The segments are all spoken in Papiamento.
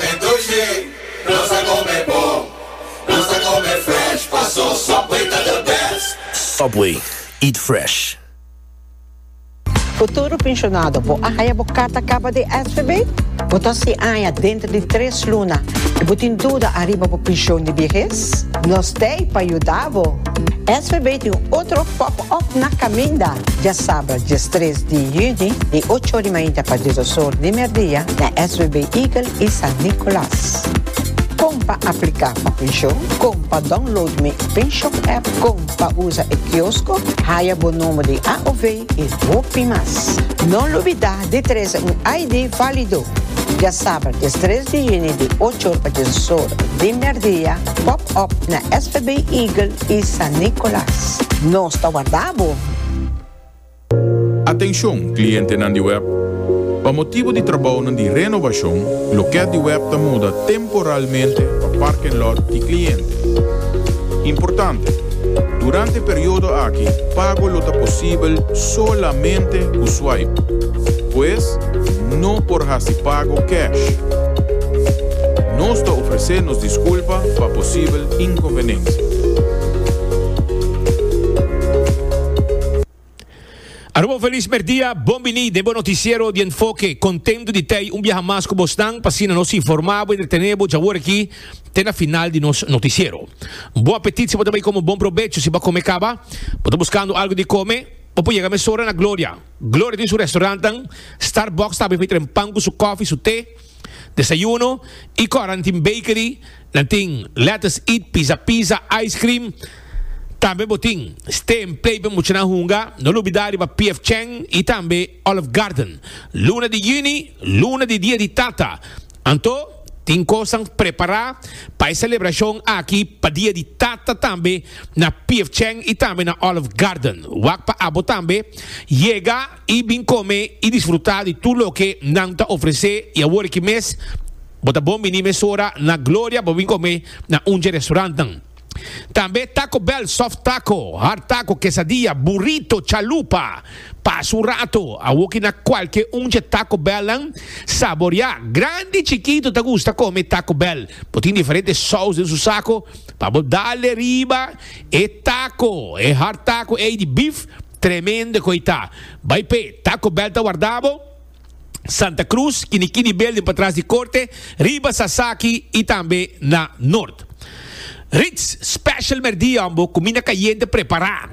Entonce nos a come bon. Nos a come fresh paso Subway ta the best. Subway, eat fresh. Futuro Pensionado, Bo a haya bo carta caba di SVB? Bo ta sin aña dentro di tres luna y bo tin duda ariba bo pension di viehes? Nos t'ey pa yuda bo! SVB tin un otro pop up na caminda dia sabra dies tres di juni di ocho or di mainta pa dies dos or di merdia na SVB Eagle y San Nicolas. Con pa aplica pa pension, con pa download mi Penshop app, con pa usa e kiosco, haya bo nomber di AOV y hopi mas. No lubida Di trese un ID válido. Dja saber des tres di juni di ocho or pa djiesus or di merdia pop up na SVB Eagle y San Nicolas. Nos ta warda bo! Atencion, clientenan di web! Pa motibu di trabaonan di renovacion, lokèt di web ta muda temporariamente. temporalmente pa parking lot di cliente. Importante, Durante periodo aki pago lo ta posibel solamente cu swipe, pues no por haci pago cash. Nos ta ofrece nos disculpa pa posibel inconvenencia. Aruba un felis merdia, bon bini den bo noticiero di Enfoke. Contento di tei un biaha mas cu bosnan, p'asina nos informa bo y entretene bo djawor aki te na final di nos noticiero. Bon apetit si bo ta bay como bon probecho si bo a come caba, bo ta buscando algo di come o por yega mesora na Gloria. Gloria tin su restaurantnan, Starbucks tambe fey tren pan cu su coffee, su te. Desayuno y cuarantin bakery nan tin lettuce eat pizza pizza ice cream tambe bo tin stay en play pa muchanan hunga no lubida riba PF chang y tambe olive garden luna di juni luna di dia di tata anto tin cosnan prepara pa e celebracion aki pa dia di tata tambe na PF chang y tambe na olive garden wak pa abo tambe yega i bin kome i disfrutá di tur loke nan ta ofresé i awor aki mes bo ta bon biní mesora na Gloria pa bin kome na un dje restaurantnan. Tambe Taco Bell, soft taco, hard taco, quesadilla, burrito, chalupa. Pasa un rato, awor ki na kualke un dje Taco Bellnan saboriá. Grandi i chikito ta gusta kome Taco Bell. Bo tin diferente sous den su sako pa bo dale riba. E taco, e hard taco ey di beef, tremendo cu ey ta. Bay p'e Taco Bell ta warda bo? Santa Cruz, kini kini building patras di Corte, riba Sasaki y tambe na Noord. Ritz Special Merdia Hombo, cuminda cayente prepara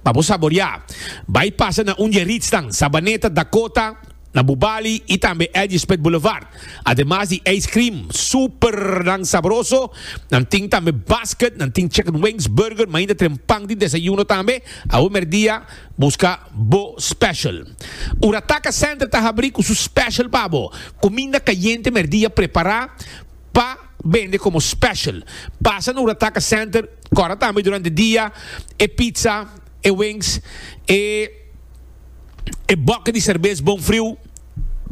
pa bo saboria. Bay pasa na un di e Ritznan, Sabaneta, Dakota, na bu bali y tambe Edgespit Boulevard. Ademas di ice cream super nan sabroso, nan tin tambe basket, nan tin chicken wings, burger, mainda tren pan di desayuno tambe. Awe merdia busca bo special. Ora Taka Center ta habri cu su special pa bo, cuminda cayente merdia prepara pa bende como special. Pasa na Ora Taka Center cora tambe durante dia e pizza, e wings, e. e bòke di serbes bon friu.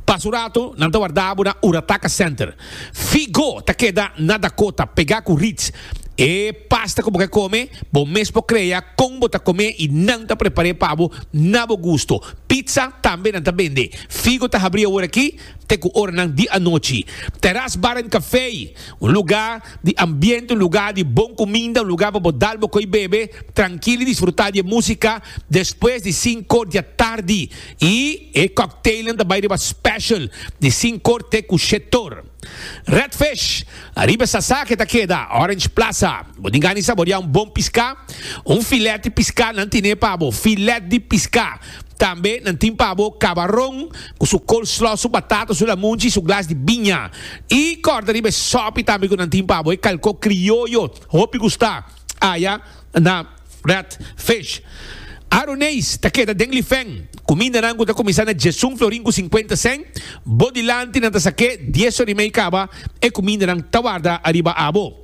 Pas un rato nan ta wardá bo na Urataka Center. Figo ta keda na Dakota, pegá ku Ritz. E pasta ku bo ke kome, bo mes por krea kon bo ta kom'é i nan ta prepar'é pa bo na bo gusto. Pizza tambe nan ta bende. Figo ta habrí awor aki. te ku oranan di anochi. Teras Bar en Café, un lugá di ambiente, un lugá di bon kuminda, un lugá pa bo dal bo koi bebe trankil i disfrutá di e músika despues di sinkor di atardi. I e kòkteilnan ta bai riba special di sinkor te ku shetor. Redfish, ariba e sasa ke ta keda Orange Plaza. Bo tin gana di saboriá un bon piská? Un filèt di piská nan tine pa bo, filèt di piská. Tambe nan tin pa bo kabaron ku su coleslaw, su batata, su lamunchi, su glas di biña. I kòrda riba e sòpi tambe ku nan tin pa bo, e kalkó krioyo, hopi gustá aya na Red Fish. Aruneis ta keda den Lifèn. Kumindanan ku ta kuminsá na djesun florin ku sinkuenta sèn, bo dilanti nan ta sak'é dies òr i mei kaba, e kumindanan ta warda ariba abo.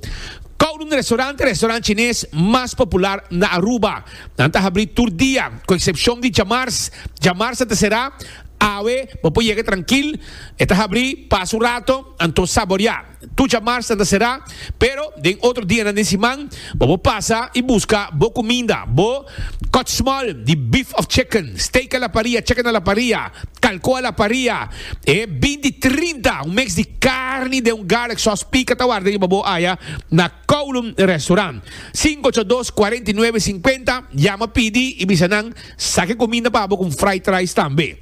Kowloon Restaurant ta e restaurant chines mas popular na Aruba. Nan ta habrí tur dia, ku eksepshon di djamars. Djamars a ta será. Awe bo por yega trankil. E ta habrí pas un rato, anto saboriá. Tur djamars nan ta será, pero den otro dianan den siman bo por pasa i buska bo kuminda, bo kòtsmòl di bif òf chicken, steak a la paria, chicken a la paria, kalkó a la paria, e binti trinta un mèks di karni den un garlic sòs pika ta warda riba bo aya na. Kowloon Restaurant, sinku ocho dos, kuarenta i nuebe, sinkuenta, yama pidi i bisa nan saki kuminda pa bo ku un fried rice tambe.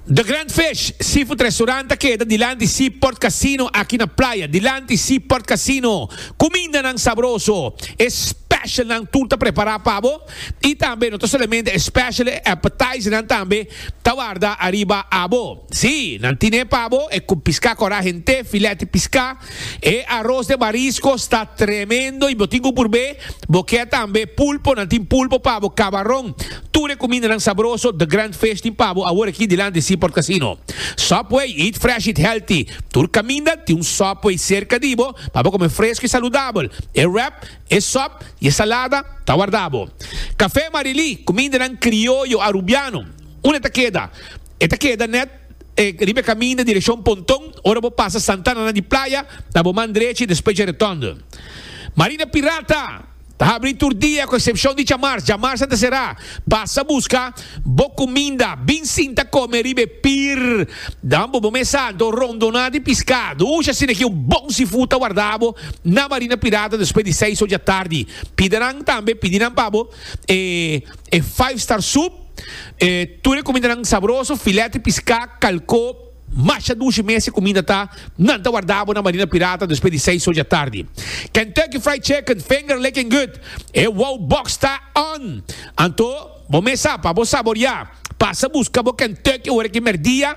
The Grand Fish Seafood Restaurant ta keda dilanti Seaport Casino aki na Playa. Dilanti Seaport Casino, kumindanan sabroso, e specialnan tur ta prepara pa bo i tambe no ta solamente e special, e appetizernan tambe ta warda ariba abo. Sí, nan tine pa bo e cu pisca cora hent'e filete pisca. E aros de marisco sta tremendo y bo tin cu purbe. Bo kier tambe pulpo, nan tin pulpo pa bo, cabaron. Tur e cumindanan sabroso The Grand Fish tin pa bo awor aki dilanti Seaport Casino. Subway, eat fresh, eat healthy. Tur caminda tin un Subway cerca di bo pa bo come fresco y saludabel. E wrap, e sop y e salada ta warda bo. Café Marilí, cumindanan crioyo Arubiano. Unda ta keda? E ta keda net riba e kaminda direkshon Ponton, ora bo pasa Santa Ana di Playa na bo man drechi despues dje Retònde. Marina Pirata ta habri tur dia ku eksepshon di djamars, djamars a ta será. Pasa buska bo kuminda, bin sinta kome riba e pir, dan bo bo mesa anto rondoná di piskadu, uxa asina aki un bon seafood ta wardabo na Marina Pirata despues di seis oja tardi. Pidenan tambe, pidi nan pa bo. e e five star soup, e tur e kumindanan sabroso, filèt di piská, kalkó, masha dushi mes e kuminda ta, nan ta wardá bo na Marina Pirata despues di seis oja tardi. Kentucky Fried Chicken, finger licking good, e wow box ta on! Anto, bo mes sa pa bo saboriá. Pasa buska bo Kentucky ora ki merdia,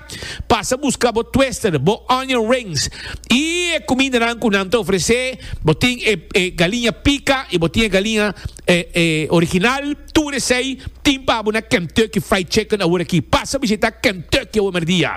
pasa buska bo twister, bo onion rings y e cumindanan cu nan ta ofrece. Bo tin e e galiña pica y bo tin e galiña e e original. Tur esey tin pa bo na Kentucky Fried Chicken awor aki. Pasa bishita Kentucky awor merdia.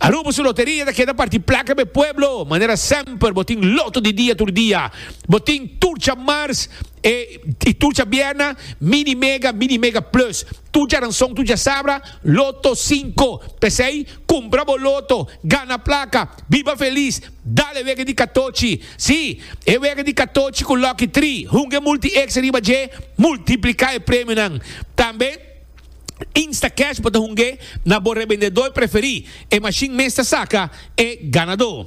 Aruba su loteria ta keda parti placa pa e pueblo. Manera semper bo tin loto di dia tur dia. Bo tin tur dja mars e y tur dja bierna, mini mega, mini mega plus. Tu djaranson, tu djasabra, loto cinco. P'esei, cumpra bo loto, gana placa, biba feliz, dal e wega di catochi. Sí, e wega di catochi cu lucky tri, hunga e multi-X riba dje, multiplica e premionan. Tambe, Instacash bo ta hunga na bo rebendedor preferi, e machine mes ta saca e ganador.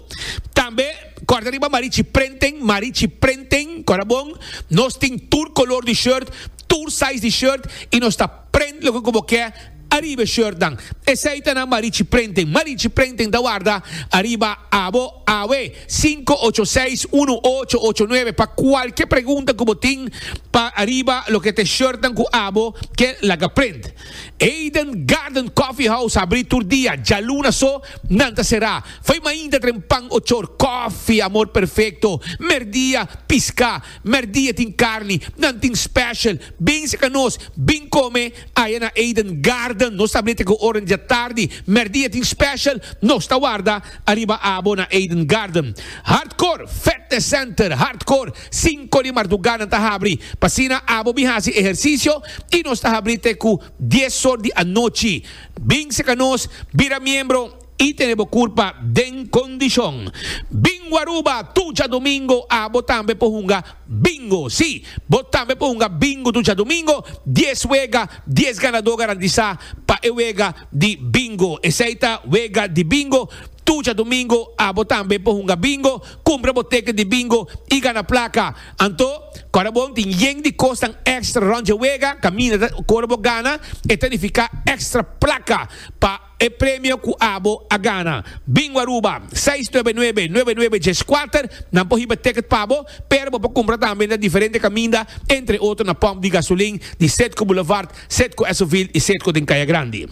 Tambe, corda riba Marichi Prenten, Marichi Prenten, cora bon, nos tin tur color di shirt, tur size di shirt y nos ta prent loke cu bo ke ariba e shirtnan. Esey ta na Marichi Printing. Marichi Printing ta warda ariba abo awe. Sinku ocho seis unu ocho ocho nuebe pa cualkier pregunta cu bo tin pa ariba loke t'e shirtnan cu abo ke laga print. Eden Garden Coffee House a abri tur dia, djaluna so nan ta sera. Foi mainta tren pan ochor, coffee, amor perfecto, merdia, pisca. Merdi e tin carni, nan tin special. Bin seca nos, bin come aya na Eden Garden. Nos ta ablete cu ora dja tardi. Merdi e tin special, nos ta warda ariba abo na Eden Garden. Hardcore Fetness Center, Hardcore, cinco di marduga nan ta habri. P'asina abo bin haci ehercicio y nos ta habri te cu dies or di anochi. Bin seca nos, bira miembro. I tene bo curpa den condicion. Bingo Aruba tucha domingo a bo tambe por hunga Bingo. Si, bo tambe por hunga Bingo tucha domingo, dies wega, dies ganador garantisa pa e wega di Bingo. Esey ta wega di Bingo tucha domingo a bo tambe por hunga Bingo, cumpra bo ticket di Bingo y gana placa. Anto, ora bon tin yen di cosnan extra rond dje wega, caminda ta cor bo gana, e ta nifica extra placa pa. E premio cu abo a gana. Bingo Aruba, seis nuebe nuebe, nuebe nuebe dies kuater, nan por hiba ticket pa bo, pero bo por cumpra tambe na diferente caminda, entre otro na pump di gasolin di Cedco Boulevard, Cedco Esoville y Cedco den Caya Grandi.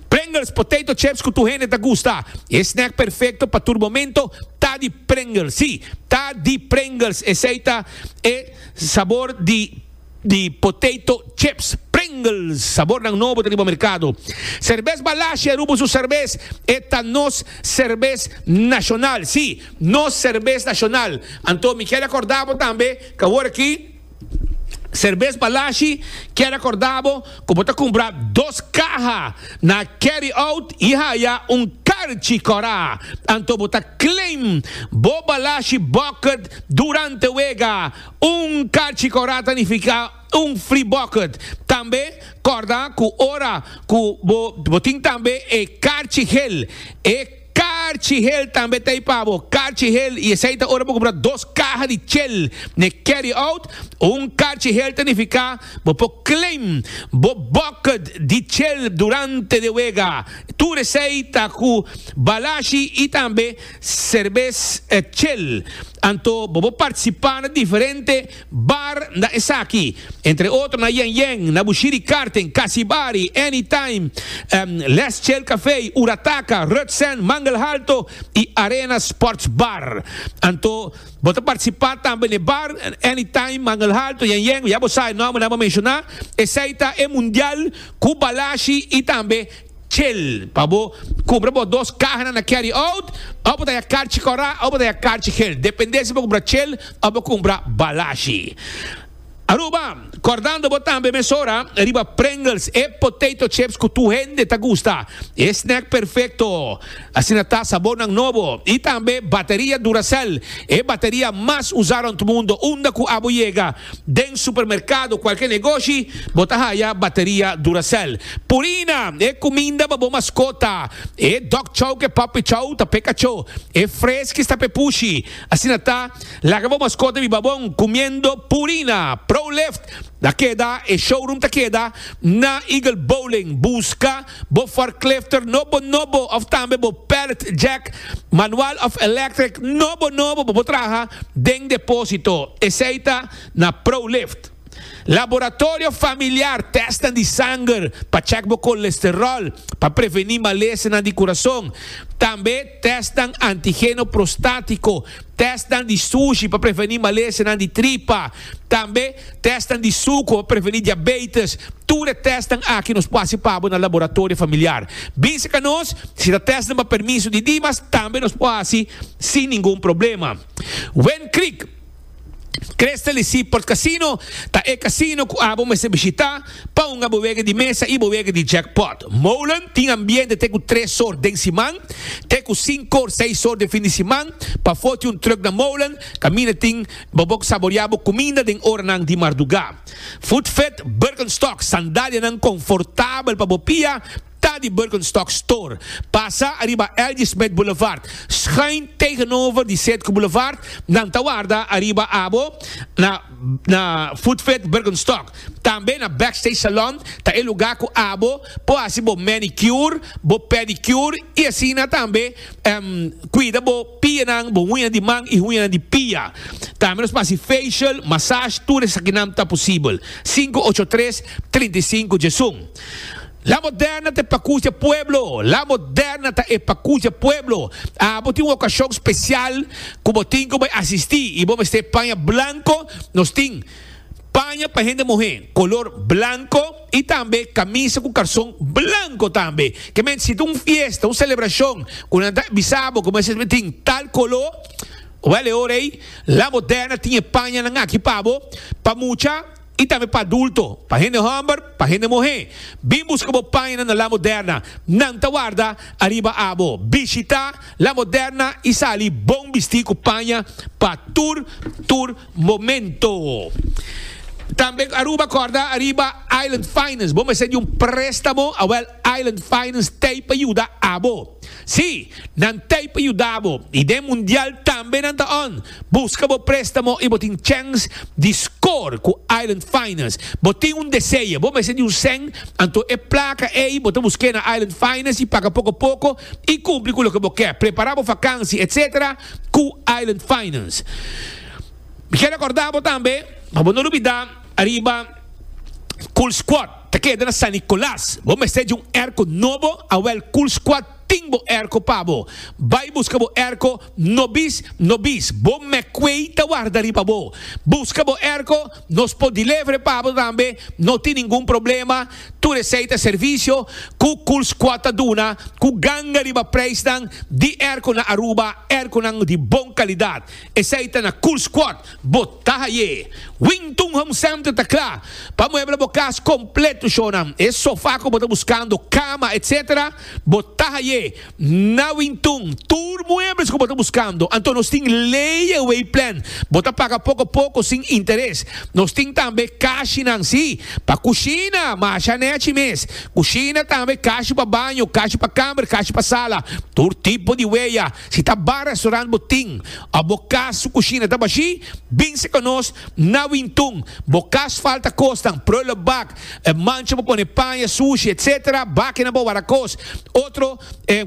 Pringles, potato chips cu tur hende ta gusta. E snack perfecto pa tur momento ta di Pringles. Sí, ta di Pringles, esey ta e sabor di. di potato chips Pringles sabornan nobo ta riba merkado. Serbes Balashi a rubo su serbes, e ta nos serbes nashonal, si, nos serbes nashonal. Anto mi kier akorda bo tambe ku awor aki Serbes Balashi kier akorda bo ku bo ta kumpra dos kaha na Carry Out i haya un karchi kòrá. Anto bo ta claim bo Balashi bucket durante wega. Un kachi kòrda ta nifiká un fri bòkert. Tambe kòrda ku ora ku bo bo tin tambe e karchi hel, e karchi hel tambe ta ei pa bo, karchi hel, i esei ta ora bo kumpra dos kaha di chel n'e carry-out. Un karchi hel ta nifiká bo por claim bo bòkert di chel durante de wega. Tur esei ta ku balashi i tambe. Serbes e chel. Anto bo por participa na diferente bar na esaki. Entre otro na Yen Yen, na Bushiri Karten, Kasi Bari, Any Time, Les Chel Cafe, Urataka, Rut Sand, Mangel Halto y Arena Sports Bar. Anto bo ta participa tambe n'e bar, Any Time, Mangel Halto, Yen Yen, ya bo sa e nomber nan bo menciona. Esey ta e Mundial cu Balashi y tambe. Chel, pa bo cumpra bo dos cahanan na carry out, of bo ta ya carchi cora of bo ta ya carchi gel, depende si bo cumpra chel of bo cumpra balashi. Aruba, cordando bo tambe mesora riba Pringles, e potato chips cu tur hende ta gusta, e snack perfecto. Asina ta sabónan nobo i tambe bateria Duracell, e bateria mas usá rònt mundu. Unda ku abo yega, den supermerkado, kualke negoshi, bo ta haya bateria Duracell. Purina, e kuminda pa bo maskota, e dog chow ku e puppy chow ta p'e kachó, e Friskies ta p'e pushi. Asina ta, laga bo maskota biba bon kumiendo Purina. Pro Lift ta keda, e showroom ta keda na Eagle Bowling. Buska. Bo forklifter no bo nobo of tambe bo pallet jack manual of electric no bo nobo bo por traha den deposito esey ta na Prolift. Laboratorio familiar testan di sanger pa check bo kolesterol pa preveni malesenan di kurason tambe. tèstnan antigeno prostátiko, tèstnan di sushi pa prevení malesenan di tripa, tambe tèstnan di suku pa prevení diabeitis. Tur e tèstnan aki nos por hasi pa bo na laboratorio familiar. Bisa ka nos si ta tèstnan pa permiso di Dimas, tambe nos por hasi sin ningun problema. Wen Creek. Crystal di si Port Casino ta e casino cu abo mester bishita pa hunga bo wega di mesa y bo wega di jackpot. Molen tin ambiente te cu tres or den siman te cu cinco or seis or den fin di siman. Pa foti un truck na Molen caminda tin bo bo saborea bo cuminda den oranan di marduga. Food Fit Birkenstock, sandalianan confortabel pa bo pia. Ta di Birkenstock Store, pasa ariba L.J. Smith Boulevard, schuin tegenover di Setco Boulevard, nan ta warda ariba abo na na Footfit Birkenstock. Tambe na Backstage Salon ta e luga ku abo por hasi bo manicure, bo pedicure i asina tambe kuida bo pianan, bo huña di man i huñanan di pia. Tambe nos por hasi facial, massage, tur esakinan ta posibel. Sinku ocho tres, trinta i sinku Djesun. La moderna ta e pacusa e pueblo. La moderna ta e pacusa e pueblo. Abo tin un ocasion special cu bo tin cu bo a asisti y bo mester paña blanco. Nos tin paña pa hende muhe color blanco y tambe camisa cu carson blanco tambe. Ke mente si ta un fiesta, un celebracion cu nan ta bisa bo cu bo mester tin tal color, wel e ora ey La moderna tin e pañanan aki pa bo pa mucha. I tambe pa adulto, pa hende homber, pa hende muhé. Bin buska bo paina na La Moderna. Nan ta warda ariba abo. Bishitá La Moderna i sali bon bistí ku paña pa tur tur momento. Tambe Aruba kòrda ariba Island Finance. Bo mester di un préstamo? Awèl, Island Finance t'ei pa yuda abo. Sí, nan t'ei pa yuda bo i den mundial tambe nan ta on. Buska bo préstamo i bo tin chèns di skor ku Island Finance. Bo tin un deseo, bo mester di un sèn, anto e plaka ei bo ta busk'é na Island Finance i paga poko poko i kumpli ku loke bo ke, prepará bo fakansi etc. Ku Island Finance. Mi ke rekordá bo tambe pa bo no lubidá ariba Cool Squad. Ta keda na San Nicolas. Bo mester dje un erko nobo, awel Cool Squad tin bo erko pa bo. Bai buska bo erko no bis, no bis. Bo Meckway ta warda riba bo. Buska bo erko, nos por delevere pa bo tambe, no tin ningun problema. Tur esei ta servisio ku Cool Squad ta duna ku ganga riba preisnan di erko na Aruba, erkonan di bon kalidat. Esei ta na Cool Squad, bo ta haye. Wington Home Center ta kla pa muebla bo kas kompleto shonan, e sofa ku bo ta buskando, kama, etc. Bo ta haye na Wington tur muebles ku bo ta buskando. Anto nos tin layaway plan, bo ta paga poko poko sin interes. Nos tin tambe kashinan, si, pa kushina, masha nèchi mes. Kushina tambe, kashi pa baño, kashi pa kamer, kashi pa sala, tur tipo di weya. Si ta bar restaurant bo tin of bo cas su cushina ta bashi, binse cu nos na Wintun. Bo cas falta cosnan, prullenbak, mancha pa pone paña, sushi, etc. Bakinan pa wara cos. Otro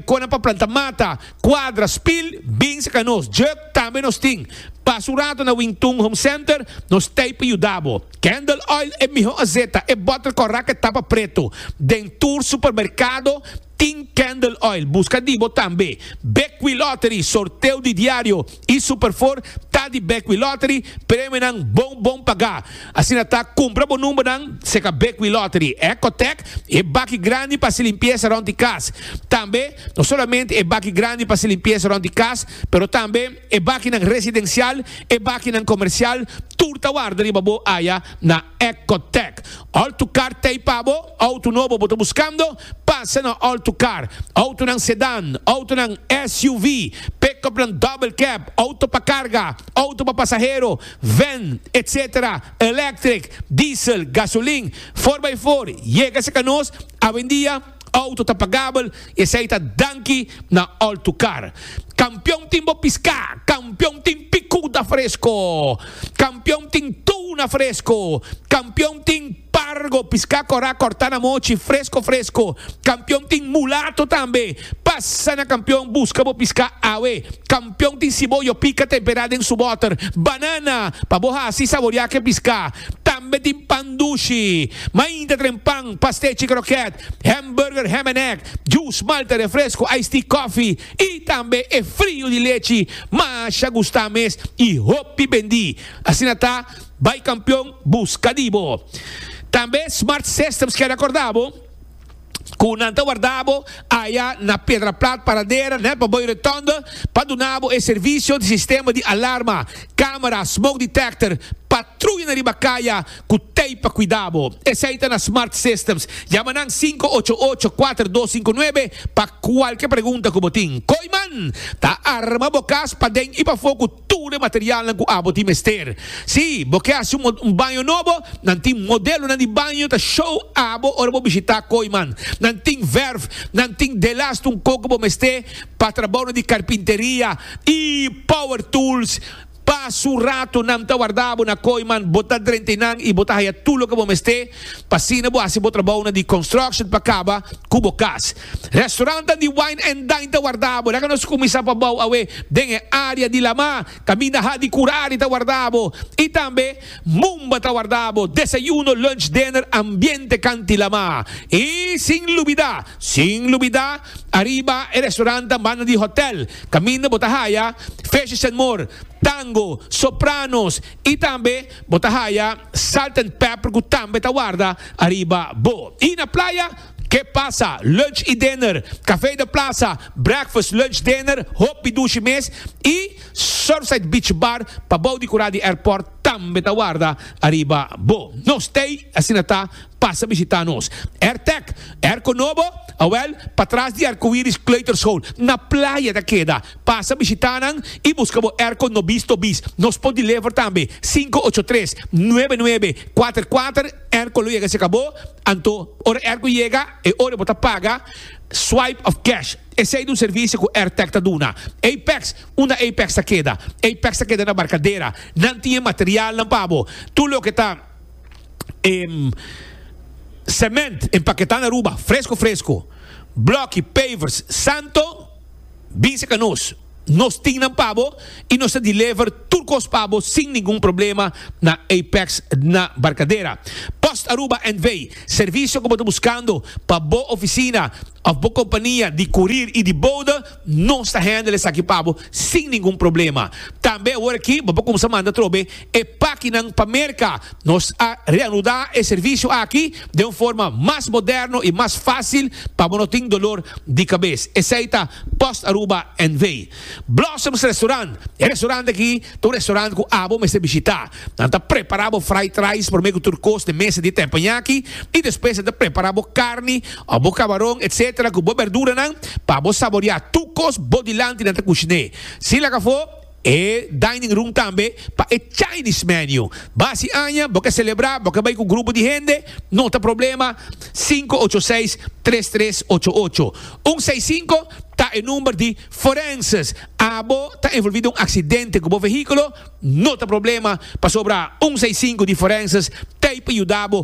conan pa planta mata, cuadra, spil, binse cu nos. Jug tambe nos tin. Pasa un rato na Wintun Home Center, nos t'ey pa yuda bo. Candle oil e miho azeta, e bottle correct e tapa preto. Den tur supermercado, Tin Candle Oil buska di bo tambe. Bekwee Lottery, sorteo di diario y Superfour ta di Bekwee Lottery, premionan bon bon pagá. Asina ta, kumpra bo numbernan seca Bekwee Lottery, Ecotec, e baki grandi pa haci limpieza rond di cas. Tambe, no solamente e baki grandi pa haci limpieza rond di cas, pero tambe e bakinan residencial, e bakinan comercial, tur ta warda riba bo aya na. Ecotec, Auto Car t'ei pa bo? Auto nobo bo ta buscando? Pasa na Auto Car, autonan sedán, autonan SUV, pick-upnan double cab, auto pa carga, auto pa pasahero, van, etc. Electric, diesel, gasolin, for by for, yega sa ka nos awendia. Auto ta pagabel y esey ta danki na Altucar. Campeon tin bo pisca, campeon tin picuda fresco, campeon tin tuna fresco, campeon tin pargo, pisca cora corta na mochi, fresco fresco, campeon tin mulato tambe. Pasa na Campeon busca bo pisca awe. Pion tin siboyo pika temperá den su bòter. Banana pa bo hasi saboriá ke piská. Tambe tin pan dushi. Mainta tren pan, pastechi krokèt, hèmburger, hèm en èg, jus, malta, refresko, ice tea, kòfi i tambe e friu di lechi masha gustá mes i hopi bendí. Asina ta, bai kampion buska di bo. Tambe Smart Systems kèn akordá bo. ku nan ta warda bo aya na Pedra Plat Paradera nel Paboy Rotonde pa duna bo e servisio di sistema di alarma, kamera, smoke detector, patruya na riba kaya ku tei pa kuida bo. Esei ta na Smart Systems. Yama nan sinku ocho ocho kuater dos sinku nuebe pa kualke pregunta ku bo tin. Koiman ta arma bo kas paden i pafó ku. tur e materialnan ku abo tin mester. Si bo ke hasi un baño nobo, nan tin modelonan di baño ta show abo ora bo bishitá Kooiman. Nan tin verf, nan tin delast un koko bo mester pa trabounan di karpinteria i power tools. Pa su rato nan ta warda abo na Kooiman, bo ta drenta einan i bo ta haya tur loke bo mester pa asina bo hasi bo trabounan di construction pa kaba ku bo kas. Restaurantan di Wine and Dine ta wardabo. Laga nos kuminsá pa bou awe den e área di Lamá. Kaminda ha di Kurari ta wardabo i tambe Mumba ta wardabo. Desayuno, lunch, dinner, ambiente kanti Lamá. I sin lubidá, sin lubidá, ariba e restaurantan banda di hòtèl kaminda bo ta haya Fishes and More, Tango, Sopranos i tambe bo ta haya Salt and Pepper ku tambe ta warda ariba bo. I na playa. Ke pasa, lunch i dinner, Café de Plaza, breakfast, lunch, dinner, hopi dushi mes i Surfside Beach Bar pa bou di kura di airport tambe ta warda ariba bo. No stay, asina ta, pasa bishita nos. Airtec, Airco Nobo, awel, patras di Arcoiris Kleuterschool, na playa ta keda. Pasa bishita nan i buska bo airco no bis to bis. Nos por deliver tambe, sinku ocho tres, nuebe nuebe, kuater kuater, airco lo yega cerca bo. Anto, ora airco yega, e ora bo ta paga Swipe of Cash. Esey ta un servicio cu Airtech ta duna. Apex, Unda Apex ta keda? Apex ta keda na Barcadera. Nan tin e materialnan pa bo. Tur loke ta cement empaketa na Aruba, fresco fresco. Bloki, pavers, santo, binse ca nos. Nos tin nan pa bo y nos ta deliver tur cos pa bo sin ningun problema na Apex dna Barcadera. Post Aruba NV. Servicio cu bo ta buscando pa bo oficina of bo compania di courier y di bode, nos ta handle esaki pa bo sin ningun problema. Tambe aworaki bo por cuminsa manda trobe e pakinan pa Merka. Nos a reanudá e servisio aki den un forma mas moderno i mas fásil pa bo no tin dolor di kabes. Esei ta Post Aruba NV. Blossoms Restaurant, E restaurant aki ta un restaurant ku abo mester bishitá. Nan ta prepará bo fried rice promé ku tur kos den mesa di tempoñaki i despues nan ta prepará bo karni òf bo kabaron etc. Ku bo berduranan pa bo saboreá tur kos bo dilanti nan ta kushiné. Sin laga afó. E dining room tambe pa e Chinese menu. Ba si aña bo ke celebra, bo ke bay cu grupo di hende, no ta problema, sinku ocho seis, tres tres ocho ocho. Un seis sinku ta e number di forenses. Abo ta envolvi den un accidente cu bo vehiculo, no ta problema, pasobra un seis sinku di forenses ta ey pa yuda bo.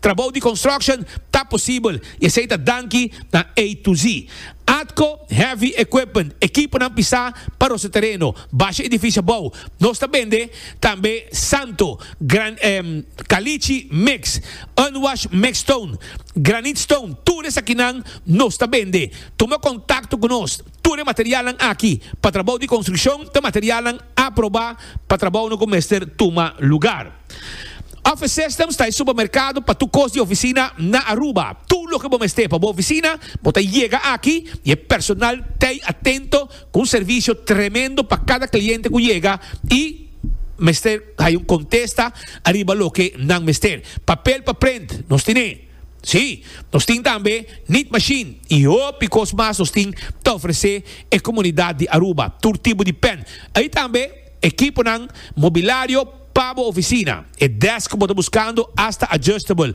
Trabou di construction ta posibel y esey ta danki na A to Z. Atco Heavy Equipment, ekiponan pisá pa rosa tereno, basha edificio abou, nos ta bende tambe Santo, gran Caliche mix, Unwash mix stone, Granite stone, tur esakinan nos ta bende. Tuma contacto cu nos, tur e materialnan aki pa trabou di construccion ta materialnan aprobá pa trabounan cu mester tuma lugar. Office Systems ta e supermerkado pa tur kos di ofisina na Aruba. Tur loke bo mester pa bo ofisina, bo ta yega aki i e personal ta ei atento ku un servisio tremendo pa kada kliente ku yega i mester haya un kontesta ariba loke nan mester. Papel pa prent nos tin e. Sí, nos tin tambe Knead Machine i hopi kos mas nos tin ta ofresé e komunidat di Aruba. Tur tipo di pen. Ei tambe. Ekiponan, mobilario pa bo ofisina, e desk ku bo ta buskando asta adjustable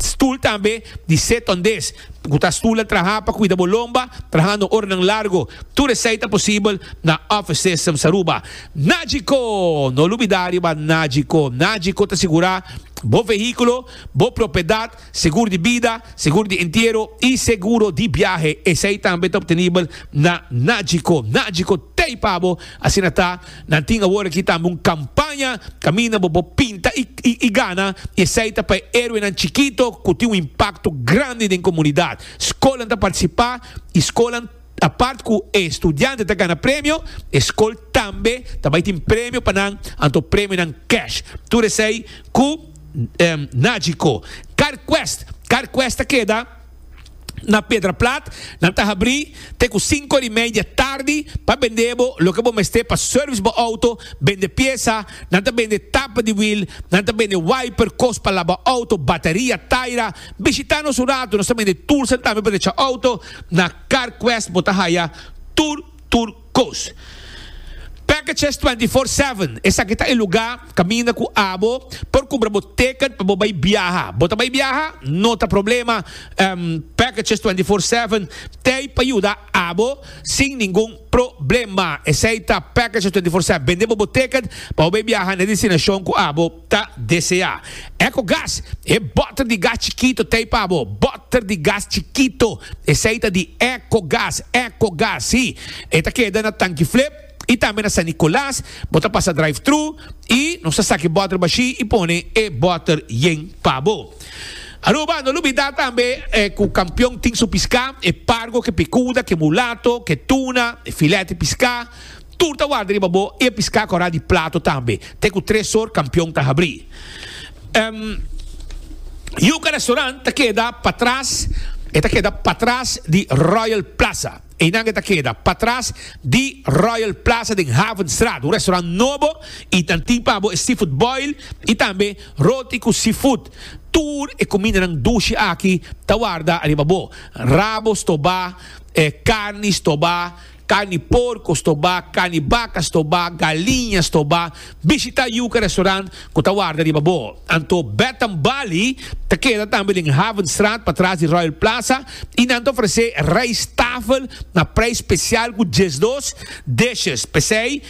stul tambe di setondes ku ta stul ta traha pa kuida bo lomba trahando oranan largo. Tur esei ta posibel na Office Systems Aruba. Nagico! No lubida riba Nagico. Nagico ta sigurá bo vehíkulo, bo propiedat Seguro di bida, seguro di entiero y seguro di biahe esey tambe ta obtenibel na Nagico. Nagico ta ey pa bo. Asina ta, nan tin awor aki tambe un campaña caminda bo bo pinta y gana y esey ta pa e heroenan chikito cu tin un impacto grandi den comunidad. Scolan ta participa y scolan. Apart cu e studiante ta gana premio, e scol tambe ta bay tin premio pa nan, anto premionan cash. Tur esey cu Nagico. Carquest, Carquest ta keda na Pedraplat, nan ta habri te cu cinco ori media tardi pa bende bo loke bo mester pa service bo auto, bende pieza, nan ta bende tapa di wiel, nan ta bende wiper, cos pa laba auto, bateria, taira. Bishita nos un rato, nos ta bende tools tambe pa recha auto. Na CarQuest bo ta haya tur tur cos. Packages twenty four seven, esaki ta e luga caminda cu abo por cumpra bo ticket pa bo bay biaha. Bo ta bay biaha? No ta problema, Packages twenty four seven t'ey pa yuda abo sin ningun problema. Esey ta Packages twenty four seven, bende bo bo ticket pa bo bay biaha n'e destinacion cu abo. ta deseá. Ecogas, E bòter di gas chikito t'ei pa bo. Bòter di gas chikito, esei ta di Ecogas. Ecogas, sí, e ta keda na Tankiflip i tambe na San Nicolas. Bo ta pasa drive-thru i nos ta saka e bòter bashí i pone e bòter yen pa bo. Aruba, no lubidá tambe ku Kampion tin su piská, e pargo, ke pikuda, ke mulato, ke tuna, e filèt di piská. Tur ta warda riba bo e piská kòrá di plato tambe, te ku tres sor kampion ta habrí. Yuka Restaurant ta keda patras, e ta keda patras di Royal Plaza. Einan e ta keda patras di Royal Plaza den Havenstraat, un restaurant nobo i nan tin pa bo e seafood boil i tambe roti ku seafood. Tur e kumindanan dushi aki ta warda riba bo, rabo stobá, karni stobá. Carni porco stoba, carni baca stoba, galiña stoba. Bishita yuca restaurant cu ta warda riba bo. Anto Bed and Bali ta keda tambe den Havenstraat patras di Royal Plaza y nan ta ofrece rijsttafel na prijs special cu diesdos dishes. P'esey.